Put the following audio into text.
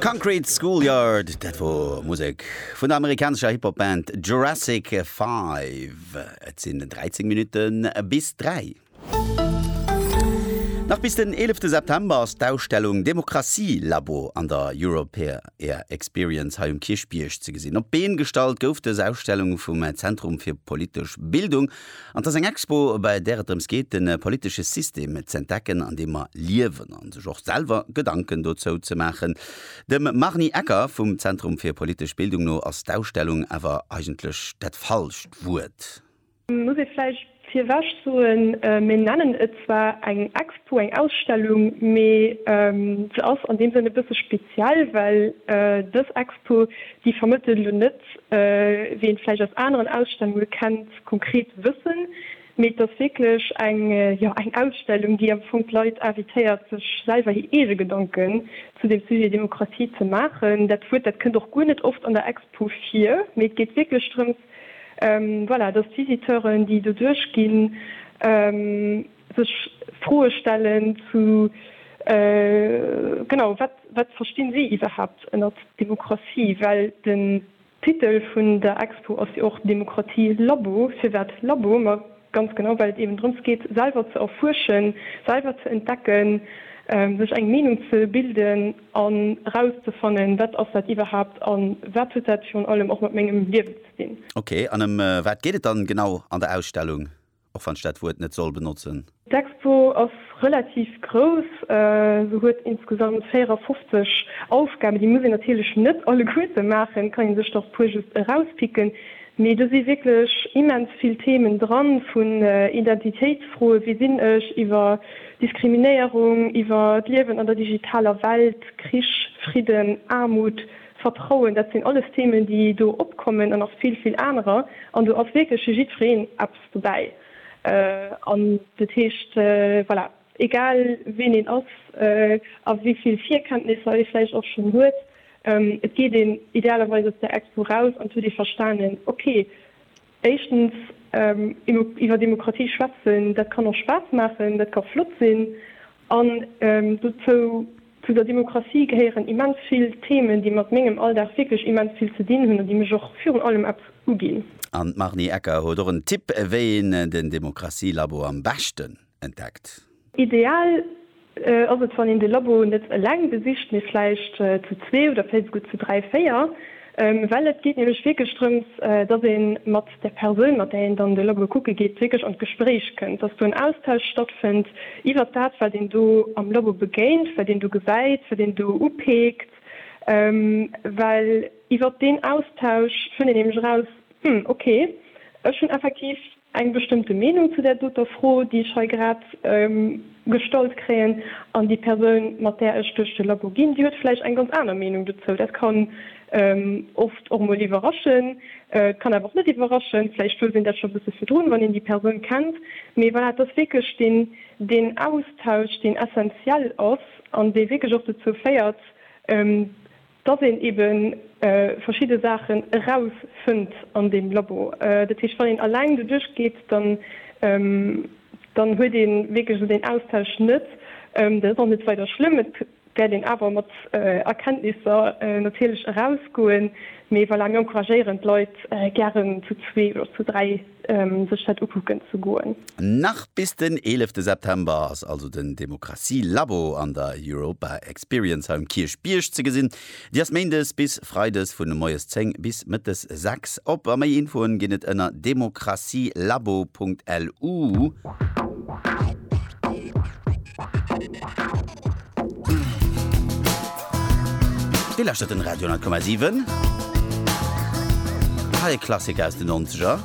Concrete Schoolyard, dat wor Musek vun der amerikanescher Hip-Hop Band Jurassic Five. Et sinn 13 Minutten bis 3. Nach bis den 11 September ass d'Ausstellung Demokratie Labo an der Europeair Experience hei um Kierchbierg ze gesinn. Op d'Been gestallt gouf dës Ausstellung vum Zentrum fir politesch Bildung An et ass eng Expo, bei där et drëms geet, de politesche System z'entdecken, an deem mer liewen, a sech och selwer Gedanken dozou ze maachen. Dem Marnie Ecker vum Zentrum fir politesch Bildung no ass d'Ausstellung awer eigentlech dat falscht Wuert. Muss ee vläicht virwech soen, mir nennen et zwar eng Expo, eng Ausstellung, mee se ass an deem Sënn e bësse speziell, well dës Expo, Puh, déi vermëttelen elo net, wéi een vläicht aus aneren Ausstellunge kennt, konkret Wëssen, mee et ass wierklech eng, jo, eng Ausstellung, déi am Fong d'Leit invitéiert, sech selwer hir eege Gedanken zu dem Sujet Demokratie ze maachen. Dat Wuert, dat kënnt och guer net oft an der Expo vir, mee et geet wierklech drëms, voilà, dass d'Visiteuren, déi do duerchginn, Sech Froe stellen zu, genau, wat, wat verstinn si iwwerhaapt ënner Demokratie? Well den Titel vun der Expo ass jo och Demokratie Labo. Firwat Labo? Ma ganz genau, well et eben drëms geet, selwer ze erfuerschen, selwer ze entdecken, sech eng Meenung ze bilden an erauszefannen, wat ass dat iwwerhaapt a wat huet dat virun allem och mat mengem Liewen ze dinn. Ok, an ëm wat geet et dann genau an der Ausstellung? och wann ech dat Wuert net soll benotzen. D'Expo ass relativ grouss, se huet insgesamt 54 Aufgaben, déi muss een natierlech net alleguerte maachen, et kann ee sech der e puer just erauspicken, mee do si wierklech immens vill Themen dran, vun Identitéitsfroen, wie sinn ech, iwwer Diskriminéierung, iwwer d'Liewen an der digitaler Welt, Krich, Fridden, Aarmut. Vertrauen, dat sinn alles Themen, déi do opkommen an nach vill, vill anerer. An do ass wierklech fir jiddwereen eppes dobäi. An dat heescht, voilà, egal ween een ass a wéi vill Virkenntnisser ee vläicht och schonn huet, et geet een idealerweis aus där Expo raus an et huet ee verstanen, okay, Éischtens, iwwer Demokratie schwätzen, dat kann och Spaass maachen, dat ka flott sinn. An dozou, zu der Demokratie gehéieren immens vill Themen, déi mat mengem Alldag wierklech immens vill ze dinn hunn an déi mech och virun allem eppes uginn. An d'Marnie Ecker huet och en Tipp, wéi een den Demokratie-Labo am beschten. entdeckt. Ideal ass et wann een de Labo net eleng besicht, mee vläicht zu zwee oder vläicht esouguer zu dräi, véier, well et geet nämlech wierklech drëms, dass ee mat der Persoun, mat där een dann de Labo kucke geet, wierklech an d'Gespréich kënnt, dass do en Austausch stattfënnt iwwert dat, wat een do am Labo begéint, wat een do gesäit, wat een do upeekt, well iwwert deen Austausch fënnt een nämlech eraus, Hm, okay, ech hunn effektiv eng bestëmmte Meenung zu där doter Fro, déi ech hei grad gestallt kréien, an déi Persoun, mat där ech duerch de Labo ginn, déi huet vläicht eng ganz aner Meenung dozou. Dat kann oft och emol iwwerraschen, et kann awer och net iwwerraschen. Vläicht wosst een dat scho e bësse virdrun, wann een déi Persoun kennt. Mee voilà, et ass wierklech deen Austausch, deen essenziell ass an dee wierklech och dozou féiert, dass een ebe verschidde Saachen erausfënnt an deem Labo. Dat heescht, wann een alleng doduerch geet, dann huet ee wierklech esou deen Austausch net. Dat ass och net weider schlëmm. Et wäert een awer mat Erkenntnisser natierlech erausgoen. Mee voilà, mir encouragéieren d'Leit gären zu zwee oder zu dräi. sech dat ukucken ze goen. Nach bis den 11 September ass also den Demokratie Labo an der Europa Experience hei um Kierchbierg ze gesinn. Déi ass méindes bis freides vun moies 10 bis mëttes 6 op a méi Infoen ginn et ënner demokratielabo.lu. Dir lauschtert den Radio 10,7. Hei e Klassiker aus den Nonzeger.